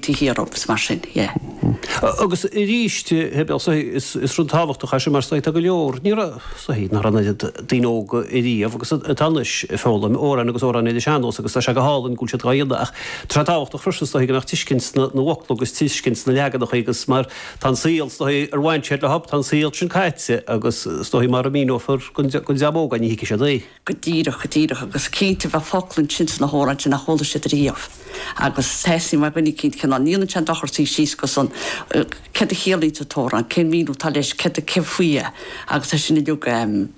to hear of, is mar sin, yeah. Agus arís, is rud tábhachtach é sin mar tá go leor ní raibh an oiread daoine óga riamh agus atá anois ag foghlaim amhráin agus amhráin ar an sean-nós agus tá sé go hálainn go bhfuil siad á dhéanamh ach tá sé tábhachtach freisin go mbeadh tuiscint na bhfocla agus tuiscint na leaganacha agus mar tá an saol ar bhain siad leob, tá an saol sin caite agus mara míneofar don dream óg, ní thuigfidh siad é. go díreach, go díreach, agus cinnte bheadh focla ansin sna hamhráin sin nach chuala siad riamh agus thaithnigh mé dhuine eicínt cén fáth, níl aon dochar suí síos agus céard a chiallaíonn an t-amhrán, cén mhíniú atá leis, céard a, cén faoi é agus é sin uilig em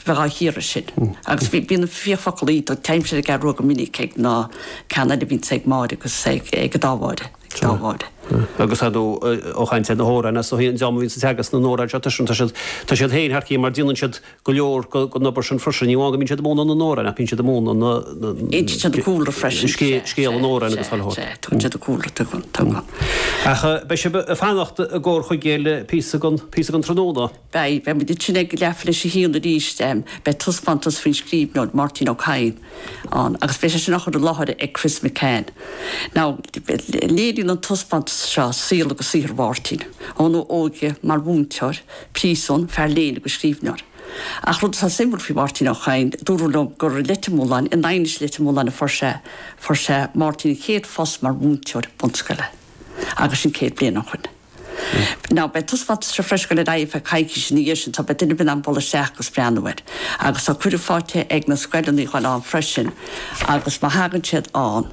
bheith á chíoradh sin agus bhí, bíonn na fíor focal í do teilgim siad ag eagrú go minic ag na ceardlanna a bhíonn ag Máire agus ag, ag an dá Mháire, ag dá Mháire. agus fadó ag caint ar na hamhráin as so hí an dream a bhíonns ag teagasc na n-amhrán seo tuigeann tú, tá siad, tá siad féin thar cionn mar déanann siad go leor den obair sin freisin, ní amháin go mbíonn siad i mbun an amhráin ach bíonn siad i mbun an chúlra is scéal an amhráin agus thoil. Ach beidh sibh ag fanacht i gComhar Chuigéal píosa den tráthnóna. Beidh, beidh muid ag leathuair tar éis 1 arís, beidh taispeántas faoin scríbhneoir Máirtín Ó Cadhain ann agus beidh sé sin á chur i láthair ag Chris McCann. Now, léiríonn an taispeántas seo saol agus saothar Mháirtín, óna óige mar mhúinteoir, príosún, fear léinn agus scríbhneoir. Ach rud atá suimiúil faoi Mháirtín Ó Cadhain, dúradh liom gur i Leitir Mealláin, i nDaighinis i Leitir Mealláin a fuair sé, fuair sé, Máirtín, a chéad phost mar mhúinteoir bunscoile. Agus sin céad bliain ó shoin. Now, beidh an taispeántas seo freisin ag dul ar aghaidh ar feadh coicíse ina dhiaidh sin so beidh daoine in ann dul isteach agus breathnú air. Agus tá cuireadh faighte ag na scoileanna a dhul ann freisin agus má thagann siad ann,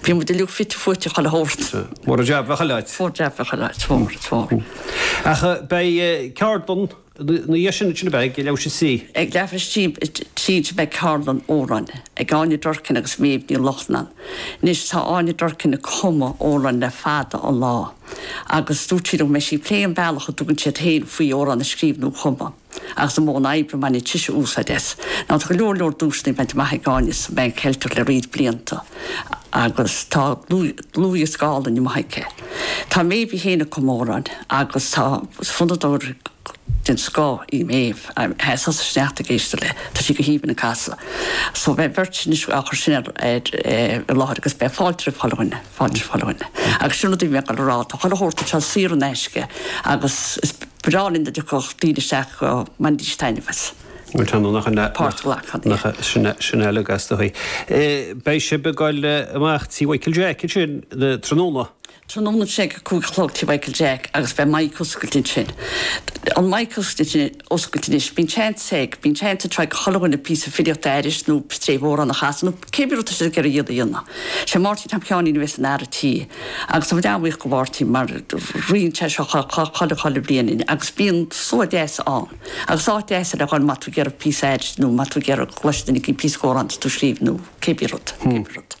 Bhí muid uilig fite fuaite chuile shórt. Mór an jab, bheadh a leithéid. Mór an jab, bheadh a leithéid, is mór, is mór. Ach beidh ceardlann ina dhiaidh sin, sin a bheidh, ag leathuair tar éis 3? Ag leathuair tar éis 3 a bheidh ceardlann amhrán, ag Áine Durkin agus Méabh Ní Lochlainn. Anois tá Áine Durkin ag cumadh amhráin le fada an lá agus dúirt sí liom go mbeidh sí ag plé an bealach a dtugann siad féin faoi amhrán a scríobh nó a chumadh. Agus an modh oibre a mbaineann sise úsáid as, now tá go leor leor duaiseanna bainte amach ag Áine sa bPan Cheilteach le roinnt blianta agus tá dlúthdhiosca álainn amuigh aici. Tá Méabh í féin ag cumadh amhrán agus tá fonnadóir den scoth í Méabh, tá sí sa sneachta ag éisteacht léi, tá sí go haoibhinn ag casadh. So beidh an bheirt sin anois á chur sin i láthair agus beidh fáilte roimh chuile dhuine. fáilte roimh chuile dhuine. Agus sin rud a bhí mé ag dul a rá, tá chuile shórt anseo saor in aisce agus is breá linn dá dtiocfadh daoine isteach go mbainfidís taitneamh as páirt a ghlacadh iontu. Sin eile agat de dhíth. Beidh sibh ag dul amach Tí Mhichael Jack, ansin? Tráthnóna? Tráthnóna ag a cúig a chlog Tí Mhichael Jack agus beidh maidhc oscailte ansin. An maidhc oscailte oscailte anois. Bíonn seans ag, bíonn seans ag chuile dhuine píosa filíochta a aithris nó stéibh amhráin a chasadh nó cé bith rud tá siad ag iarraidh iad féin a dhéanamh. Sé Máirtín Tom Sheáinín a bheas ina fhear an tí agus tá muid an-bhuíoch go Mháirtín mar ritheann sé seo chuile, chuile bhliain linn agus bíonn slua deas ann agus áit deas é le dhul má tá tú ag iarraidh píosa a aithris nó má tá tú ag iarraidh go gcloisfeadh duine éigin píosa d'amhrán atá tú a scríobh nó cé bith rud, cé bith rud.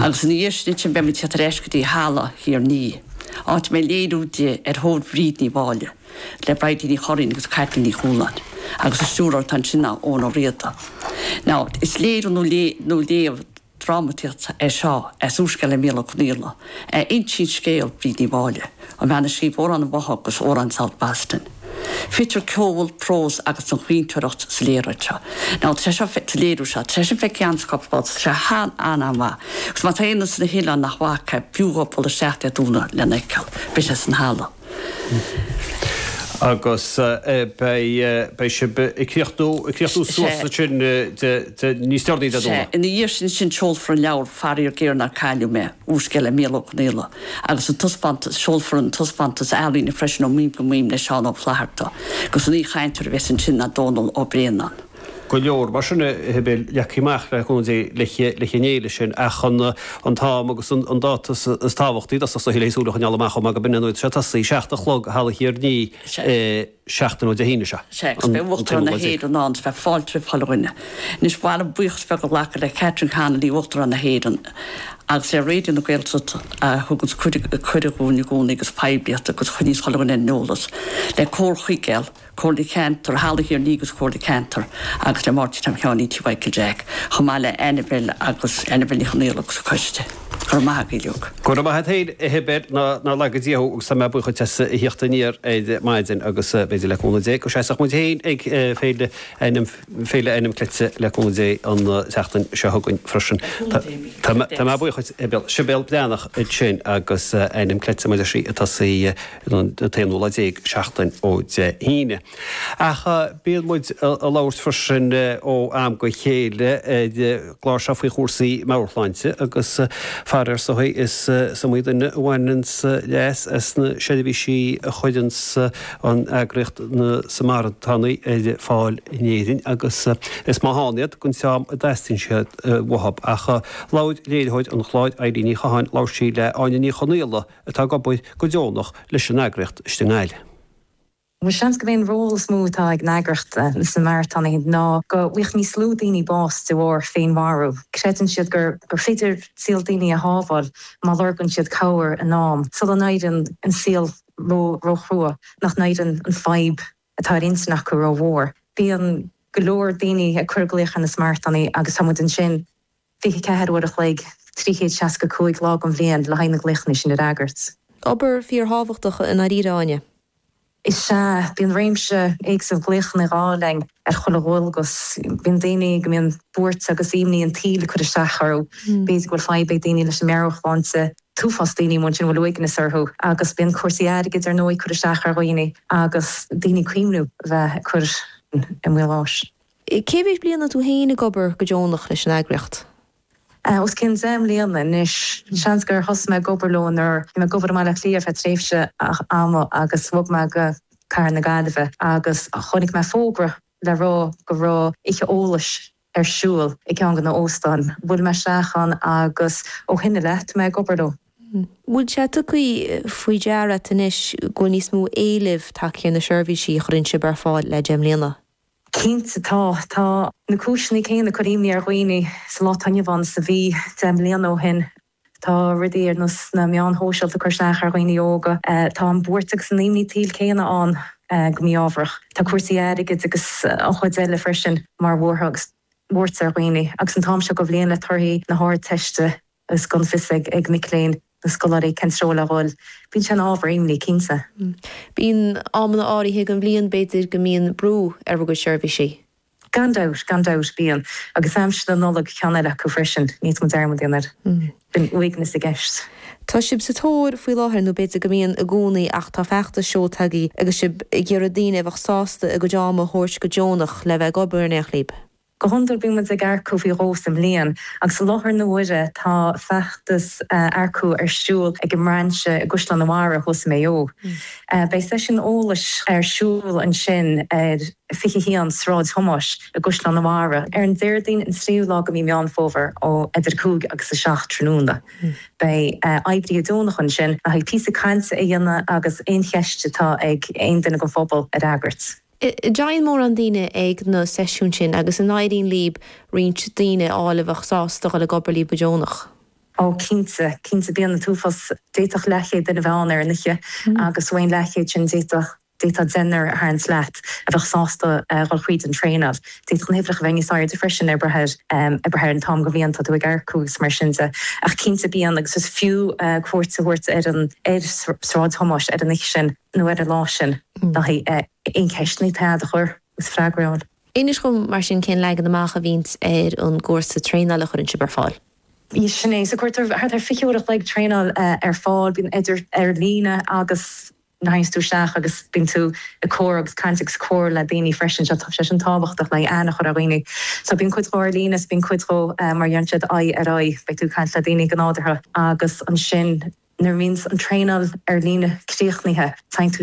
Agus ina dhiaidh sin ansin beidh muid ag tíocht ar ais go dtí Halla Thír an Fhia, áit a mbeidh léiriú de ar thóir Bhríd Ní Mháille, le Bridie Ní Churraoin agus Caitlín Ní Chualáin, agus an stiúrthóir atá ansin ná Eoghan Ó Riada. Now, is léiriú nó léamh drámataíochta é seo as úrscéal le Micheál Ó Conaola, a insíonn scéal Bhríd Ní Mháille, an bhean a scríobh Amhrán an Bháthadh agus Amhrán South Boston. Fitear ceol, prós agus an chaointeoireacht sa léaráid seo, nó treise sa léiriú seo. Treise fé cheann scoth fós. Tá sé an-an-mhaith. Agus má tá aon duine sna hoileáin nach bhfaca é, b'fhiú dhó bualadh isteacht Dé Domhnaigh lena fheiceáil. Beidh sé san halla. Agus beidh sé ag críochnú suas ansin níos deireanaí Dé Domhnaigh. Sea. Ina dhiaidh sin ansin, seolfar an leabhar, faraor géar nár cailleadh mé, úrscéal le Mícheál Ó Conaola. agus an taispeántas, seolfar an taispeántas ealaíne freisin Ó Mhaidhm go Maidhm le Seán Ó Flaithearta, agus an aoichainteoir a bheas ansin ná Dónall Ó Braonáin. Go leor mar sin atá agaibh leagtha amach le cúnamh Dé le haghaidh na féile sin, ach an, an t-am agus an dáta is tábhachtaí, d'fhostódh sa Shiolla Thíos ualach an eala amach chomh maith go binne, tá sé ag tosaí ag seacht a chlog i Halla Thír an Fhia. seachtain ó Dé hAoine seo. Sea, agus beidh Uachtarán na hÉireann ann is beidh fáilte roimh chuile dhuine. Anois, ba mhaith liom buíochas a ghlacadh le Catherine Connolly, Uachtarán na hÉireann, agus le Raidió na Gaeltachta a thuganns cuireadh dhúinn i gcónaí agus poiblíocht agus a choinníonns chuile dhuine ar an eolas, le Comhar Chuigéal, Comhairle Ceantair Halla Thír an Fhia agus Comhairle Ceantair agus le Máirtín Tom Sheáinín Tí Mhichael Jack, chomh maith le Annabel agus Annabel Ní Chonaola agus a coiste. Go raibh maith agat, Liúc. Go raibh maith a't féin a Shibéal, ná laga Dia thú agus tá mé buíoch duit as a thíocht aniar ar maidin agus b'fhéidir le cúnamh Dé go seasfaidh muid féin ag Féile Ainm Féile Ainm Cleite le cúnamh Dé an tseachtain seo chugainn freisin. Tá mé buíoch duit a Shibéal, Sibéal Breathnach ansin agus Ainm Cleite mar a deir sí ag tosaí an t-aonú lá déag seachtain ó Dé hAoine. Ach bíonn muid ag labhairt freisin ó am go chéile ar an gclár seo faoi chúrsaí meabhairshláinte agus faraor is iomaí is iomaí duine a bhaineanns leas as na seirbhísí a chuireanns an eagraíocht Na Samaritánaigh ar fáil in Éirinn agus is maith ann iad don dream a dteastaíonn siad uathu. Ach labhair léiritheoir an chláir Eilín Ní Chatháin, labhair sí le Áine Ní Chonaola atá ag obair go deonach leis an eagraíocht istigh i nGaillimh. Is dóigh gurb é an ról is mó atá ag an eagraíocht sna Samaritans ná go bhfaighidh níos lú daoine bás de bharr féinmharú. Creideann siad gur féidir saol daoine a shábháil má lorgann siad cabhair in am sula n-éireann an saol ró róchrua, nach n-éireann an fadhb atá ar intinn acu ró mhór. Bíonn go leor daoine ag cur glaoch ar na Samaritans agus tá muid ansin 24 uair a chloig, 365 lá den bhliain, le haghaidh na glaochanna sin a fhreagairt. Obair fíor thábhachtach i ndáiríre, Áine. Is ea, bíonn réimse éagsúil glaochanna ag dul dúinn ar chuile dhualgas. Bíonn daoine go mbíonn buairt agus imní an tsaoil ag cur isteach orthu. B'fhéidir go bhfuil fadhb ag daoine leis an meabhairshláinte, an t-uafás daoine amuigh ansin a bhfuil uaigneas orthu. Agus bíonn cúrsaí airgid ar ndóigh ag cur isteach ar dhaoine, agus daoine ag cuimhniú a bheith ag cur lámh ina mbás. Cé mhéad bliain atá tú féin ag obair go deonach leis an eagraíocht? Os cionn deich mbliana anois. Seans gur thosaigh mé ag obair leo nuair a bhí mé ag obair i mBaile Átha Cliath ar feadh tréimhse ama agus bhog mé go cathair na Gaillimhe agus chonaic mé fógra le rá go raibh oíche eolais ar siúl i gceann de na h-óstáin. Bhuail mé isteach ann agus ó shin i leith tá mé ag obair leo. Bhfuil sé tugtha faoi deara a't anois go bhfuil níos mó éilimh tagtha ar na seirbhísí a chuireann sibh ar fáil le deich mbliana? Cinnte tá. Tá na cúiseanna céanna ag cur imní ar dhaoine sa lá atá inniu ann is a bhí deich mbliana ó shin. Tá rudaí ar nós na meáin shóisialta ag cur isteach ar dhaoine óga. Tá an bhuairt agus an imní an tsaoil céanna ann go mí-ámharach. Tá cúrsaí airgid agus chuile shórt eile freisin ag cur buartha agus buairt ar dhaoine agus an t-am seo de bhliain le torthaí na hArdteiste is gan fios ag mic léinn, na scoláirí, cén treo le dhul. Bíonn sé ina ábhar imní, cinnte. Bíonn amanna áirithe den bhliain, b'fhéidir, go mbíonn brú ar bhur gcuid seirbhísí. Gan dabht, gan dabht, bíonn. Agus aimsir na Nollag ceann eile acu freisin, ní mór gan dearmad a dhéanamh air. Bíonn uaigneas i gceist. Tá sibh sa tóir faoi láthair, nó b'fhéidir go mbíonn i gcónaí, ach tá feachtas seo tosaithe agus sibh ag iarraidh daoine a bheadh sásta a gcuid ama a thabhairt go deonach le bheith ag obair in éineacht libh. Go hiondúil bíonn muid ag earcú faoi dhó sa mbliain agus i láthair na huaire tá feachtas earcú ar siúl ag an mBrainse i gCaisleán a' Bharraigh thuas i Maigh Eo. Beidh seisiún eolais ar siúl ansin ar 21 Sráid Thomáis i gCaisleán a' Bharraigh ar an Déardaoin an 3ú lá de mhí Meán Fómhair ó idir 5 agus 7 tráthnóna. Beidh oibrithe deonacha ansin le haghaidh píosa cainte a dhéanamh agus aon cheist atá ag aon duine den phobal a fhreagairt. An dtéann mórán daoine ag na seisiúin sin agus an éiríonn libh roinnt daoine a fháil a bheadh sásta dhul ag obair libh go deonach. Ó, cinnte, cinnte, bíonn an t-uafás, d'fhéadfadh leathchéad duine a bheith ann ar an oíche agus den leathchéad sin d'fhéadfadh, d'fhéadfadh deichniúr tarlú as a bheadh sásta dhul thríd an traenáil. D'fhéadfadh na huimhreacha a bheith níos airde freisin ag brath ar, ag brath ar an t-am den bhliain atá tú ag earcú agus mar sin de. Ach cinnte bíonn agus is fiú cuairt a thabhairt ar an, ar Shráid Thomáis ar an oíche sin. nó ar an lá sin. Aon cheist is féidir í a chur agus freagra ann. Inis dom mar sin cén leagan amach a bhíonns ar an gcúrsa traenáil a chuireann sibh ar fáil? Sin é, so cuirtear thart ar 20 uair a chloig traenáil ar fáil, bíonn idir ar líne agus théanns tú isteach agus bíonn tú ag comhrá agus caint agus comhrá le daoine freisin, tá sé sin tábhachtach le haghaidh aithne a chur ar dhaoine. So bíonn cuid dhó ar líne is bíonn cuid dhó mar a déarfá aghaidh ar aghaidh, beidh tú ag caint le daoine go nádúrtha. agus ansin nuair a bhíonns an traenáil ar líne críochnaithe, téann tú